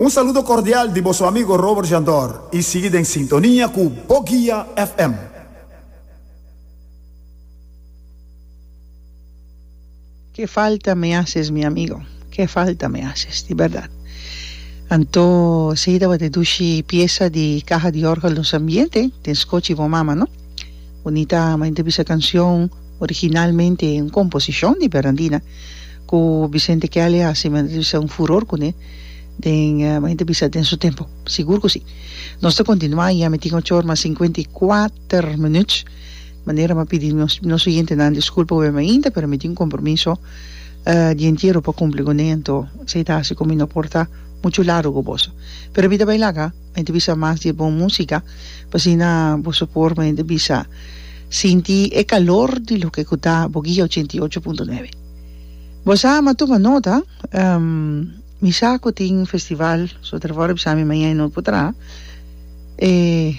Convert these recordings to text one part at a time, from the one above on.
Un saludo cordial di bo su amigo Robert Jandor y sigui den sintonia cu Bo Guia FM. Ke falta me haces mi amigo, ke falta me haces di berdad. Anto sigui tabata dushi piesa di caja di orgel nos ambiente den scochi bo mama no. Bonita ama inte bisa cancion. Originalmente e un composicion di Bernardina cu Vicente Kelly a haci men a ta bisa un furor cune den mi a ta bisa den su tempo sigur cu si. Nos ta continua y a mi tin ochor mas cincuenta y kuater minuut manera mi a pidi nos oyentenan disculpa hopi mainta pero mi tin un compromiso dia entiero pa cumpli cu ne anto esey ta haci cu mi no por ta mucho largo cu boso pero mi ta bay laga. Mester bisa mas di e bon música, pa asina boso por mester bisa sinti e kalor di loke ku ta Boguia ochenta i ocho punto nuebe. Bo sa ama tuma nota, mi sa ku tin festival, so ta wòrdu bisa mi mañana i no por traha. E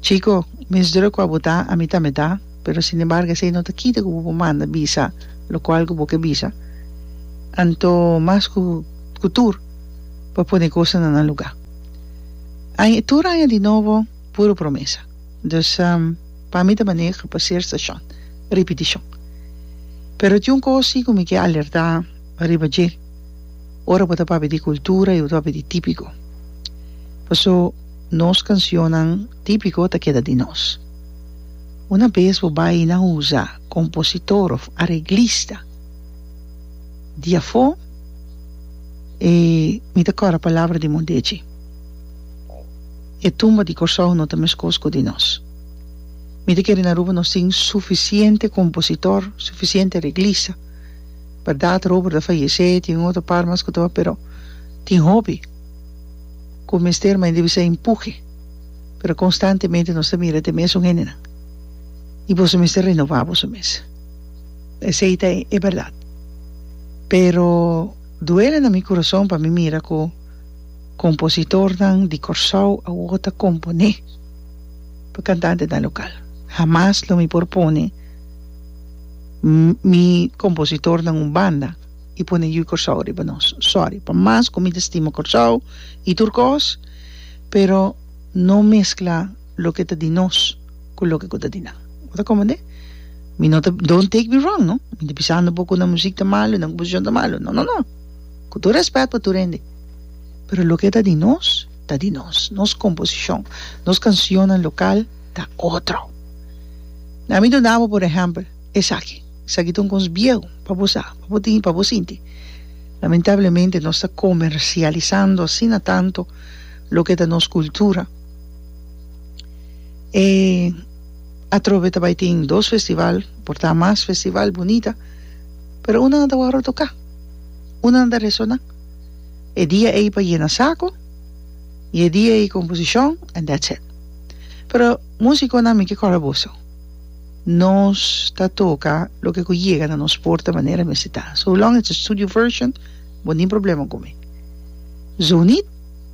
chiko, mes drùk ku abo ta, ami tambe ta, pero sin embargo esei no ta kita ku bo por manda bisa lokual ku bo ke bisa. Anto mas ku tur. pa pone cosa na nan lugar aña tur aña di nobo puro promesa dus pa mi ta manera pa ser stacion repeticion pero tin un cosa si cu mi ke alerta riba dje ora bo ta papia di cultura y bo ta papia di tipico paso nos cancionnan tipico ta keda di nos una bes bo bay na usa compositor of areglista di afó e mi ta kòrda palabra di Mondesi, E tumba di Kòrsou no ta meskos ku di nos. Mi ta kere na Aruba nos tin sufisiente kompositor, sufisiente reglista. Bèrdat Robert a fayesé, tin un otro par mas ku tabata pero tin hopi ku mester mai debí ser empuhe, pero konstantemente nos ta mira te mesun hendenan i boso mester renova boso mes. Esei ta e berdad. Pero duele na mi curason pa mi mira cu compositornan di Corsou awor ta compone pa cantantenan local. Hamas lo mi por pone mi compositornan un banda y pone Hui Corsou riba nos. Sorry. Pa mas cu mi ta stima Corsou y tur cos pero no mezcla. Loke ta di nos ku loke ku ta di nan. Bo ta komprendé? Mi no ta, don't take me wrong no, mi no ta bisando bo ku nan muzik ta malu, nan komposishon ta malu, no, no, no. Ku tur rèspèt pa tur hende. Pero loke ta di nos, ta di nos. Nos komposishon, nos kansionnan lokal ta otro. Nan mi ta da bo por ehèmpel esaki. Esaki ta un kos biehu, pa bo sa, pa bo tin, pa bo sinti. Lamentablemente nos ta komersialisando asina tantu loke ta nos kultura. E atrobe ta bai tin dos festival, por ta mas festival bunita, pero unan a tabata toca, unan ta resona. E dia ey pa yena saco y e dia ey composicion and that's it. Pero musiconan mi ke cora boso, nos ta toca loke cu yega na nos porta manera mester ta. So long it's a studio version, bo nin problema cu mi. Zoneet.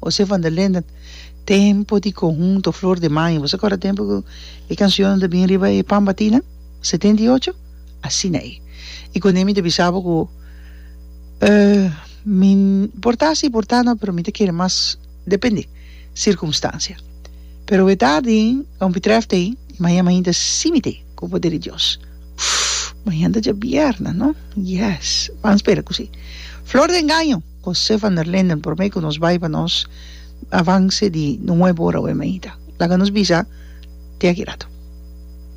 José van der Linden, Tempo di conhunto Flor de Mayo, bo sa acorda tempo cu e cancionnan ta bin riba e Pambatinnan, setenta y ocho? Asina ei. Y con ei mi ta bisa bo cu mi por ta asi por ta no pero mi ta kere mas depende circunstancia. Pero we tardi lo mi treft ei, mañan mañan ta simi te cu poder di Dios. Mañan ta dja bierna, no? Yes! Ban spera cu si. Flor de Engaño. José van der Linden, Promé ku nos bai pa nos avanse di nuebu ora Wemeyda, laga nos bisa te aki ratu.